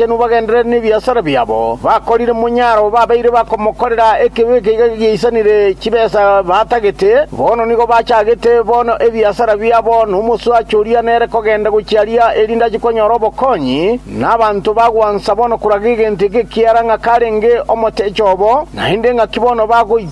Inwe bagenderere nebiasara biabo bakorire monyaro babeire bakomokorera ekibe ekeiga geisanire chibesa batagete, bono nigo bachagete bono ebiasara biabo nomoswache oria nere kogenda gochia aria erinde ache konyora obokonyi, na abanto bagwansa bono koraga egento eke ekiara ng'a karenge omoteche obo, naende ng'aki bono bagoitwa.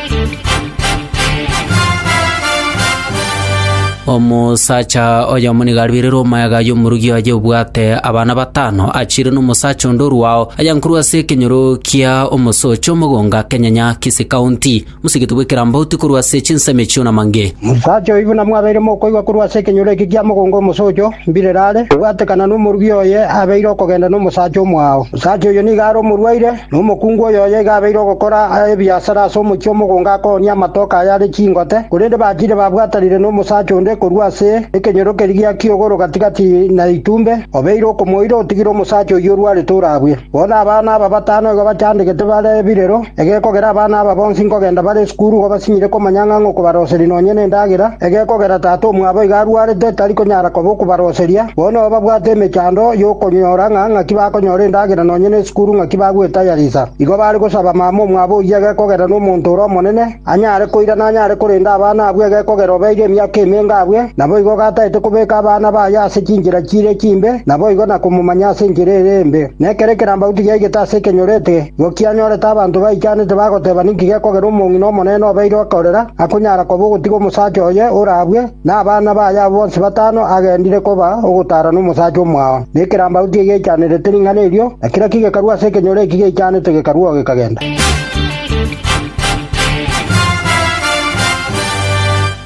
Omosacha oyomo nigo arwerire omoeaga y'omorugi oye obwate abana batano, achiire n'omosacha onde orwao, ayankorwa ase ekenyoro kia omosoche omogonga kenyanya Kisii County. Mosigete bw'ekerambauti korwa ase chinsemo echio na mange. Omosacha oyio buna mwabeire mokoigwa korwa ase ekenyoro eke kia mogonga omosocho, mbirere are, obwatekana n'omorugi oye abeire okogenda n'omosacha omwao. Omosacha oyio nigo are omorwaire, Na omokungu oyoyio iga abeire ogokora ebiasara ase omochie omogongo akoonia amatoke ayare chingote, korende bachire babwatanire nomosacha onde korwa ase ekenyoro keria gia kiogoro gati-gati na etumbe, obeire okomoira otigire omosacha oyio orwarete orabue. Bono abana aba batano igo bachandegete bare ebirero, egekogera abana aba bonsi nkogenda bare esukuru igo basinyire komanya ng'a ngokobaroseria nonya nendagera, egekogera tata omwabo iga arwarete tari konyara koba okobaroseria, bono babwate emechando y'okonyora ng'a ng'aki bakonyora endagera nonya nesukuru ng'aki bagwetayarisa. Igo bare gosaba mama omwabo oyio egekogera nomonto ore omonene, anyare koirana anyare korenda abana abwo egekogera obeire emiaka emenga abwe, naboigo gataete kobeka abana baye ase chinchera chire chimbe naboigo na komomanya ase enchera ere embe. Nekero ekerambauti giaigete ase ekenyorete, igo kianyorete abanto baichanete bagoteba ninki gekogera omong'ina omonene obeire okorera akonyara koba ogotiga omosacha oye ore abwe, Na abana baye abwo bonsi batano agendire koba ogotaara nomosacha omwao, na ekerambagu tigechanerete ring'ana erio, na kera kigekarwa ase ekenyoro eki geichanete gekarwa oo gekagenda.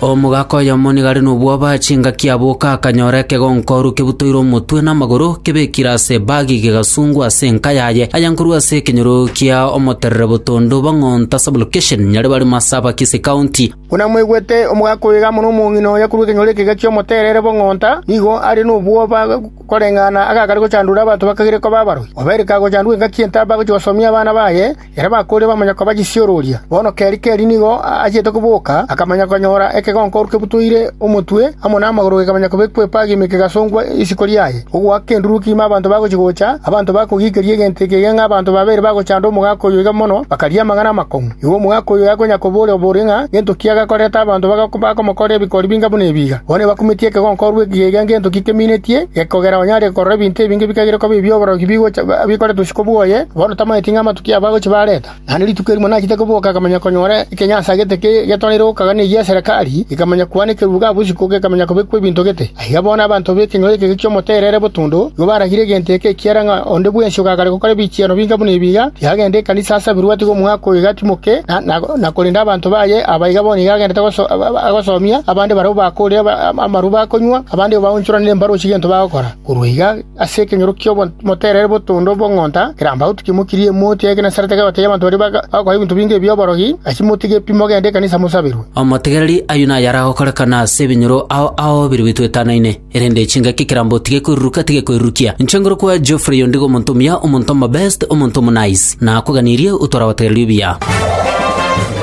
Omogaka oyomo nigo are nobwoba chingaki aboka akanyora ekegonkoru kebutoire omotwe na amagoro, kebekire ase ebagi gegasungwa ase enka yaye, aye nkorwa ase ekenyoro kia omoterere botondo bong'onto ase Bulokeshen, Nyaribari Marsabak ase County. Buna mwaigwete omogaka oyo iga amo nomong'ina oye korwa ekenyoro ekega ki'omoterere bw'ong'onta, nigo are nobwoba koreng'ana agakare gochandura abanto bakagire koba abaroi. Obeire kagochandwa engaki entaba agochia gosomia abana baye, ere bakoorire bamanya koba chisiororia. Bono keri keri nigo achiete koboka, akamanya konyora ekegonkoro kebutoire omotwe, amo namagoro gekamanya kobekwa epagi ime kegasongwa isiko riaye. Ogoaka endurwa keima abanto bagochia gocha, abanto bakogiikeria egento eke iga ng'a abanto babere bagochanda omogaka oyo iga mono, bakaria amang'ana amakong'u. Igo omogaka oyo agakonya koboria bori ng'a ngento ki agakorerete abanto bakamokorera ebikori binga buna ebi iga. Bono ebakumetie ekegonka orwe ekiya iga ngento ki keminetie, gekogera onye are korora ebinto ebinge ebikagire koba ebi'oborogi bigocha bikoretwe isiko bwoye, bono tamanyeti ng'a amatuko abo agochia bareta. Naende rituko erimo nachete koboka akamanya konyora ekenya asagete getwarire gokaga negia Serekari, ekamanya kwana ekeruba ga bosiko gekamanya kobekwa ebinto gete. Na aiga bono abanto b'ekenyoro ekege ki'omoterere botundo nigo baragire egento eke ekiagera ng'a onde bwensi ogakare gokora ebichiano binga buna ebi iga, tiagende ekanisa ase aberwao atiga omwaka oyo iga atimoke, na korende abanto baye aba iga bono iga agendete agosomia abande barabwo bakoorire amarube akonywa, abande baonchoranire embarochi gento bagokora. Korwa iga Ase ekenyoro ki'omoterere bw'otondo bw'ong'onta keramba gotukia mokirie emoti ya Genesareti akabatebia abanto baria bagakora ebinto binge ebi'oborogi, Asie motige pi mogende ekanisa mosaberwe. Omotegereri ayio naye aragokorekana ase ebinyoro ao ao biria bitwetanaine. Erinde chingaki keramba otige koiruruka tige koirurukia. Inche ngoro kwa Geoffrey oyo ndigo omonto omuya, omonto omobest, omonto omonice. Nakoganirie otware abategereri obuya.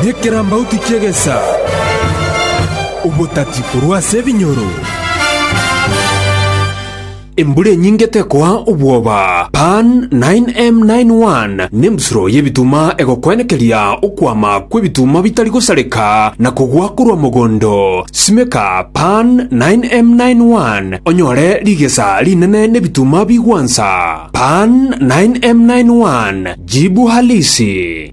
Inye keramba otikie egesa, obotati korwa ase ebinyoro. Embura enyinge tekoa obwoba. Pan 9M91 Nembusuro y'ebituma egokwenekeria okwama kw'ebituma bitari gosareka na kogwa korwa mogondo. Simeka Pan 9M91 onyore rigesa rinene n'ebituma bigwansa. Pan 9M91 Jibu Halisi.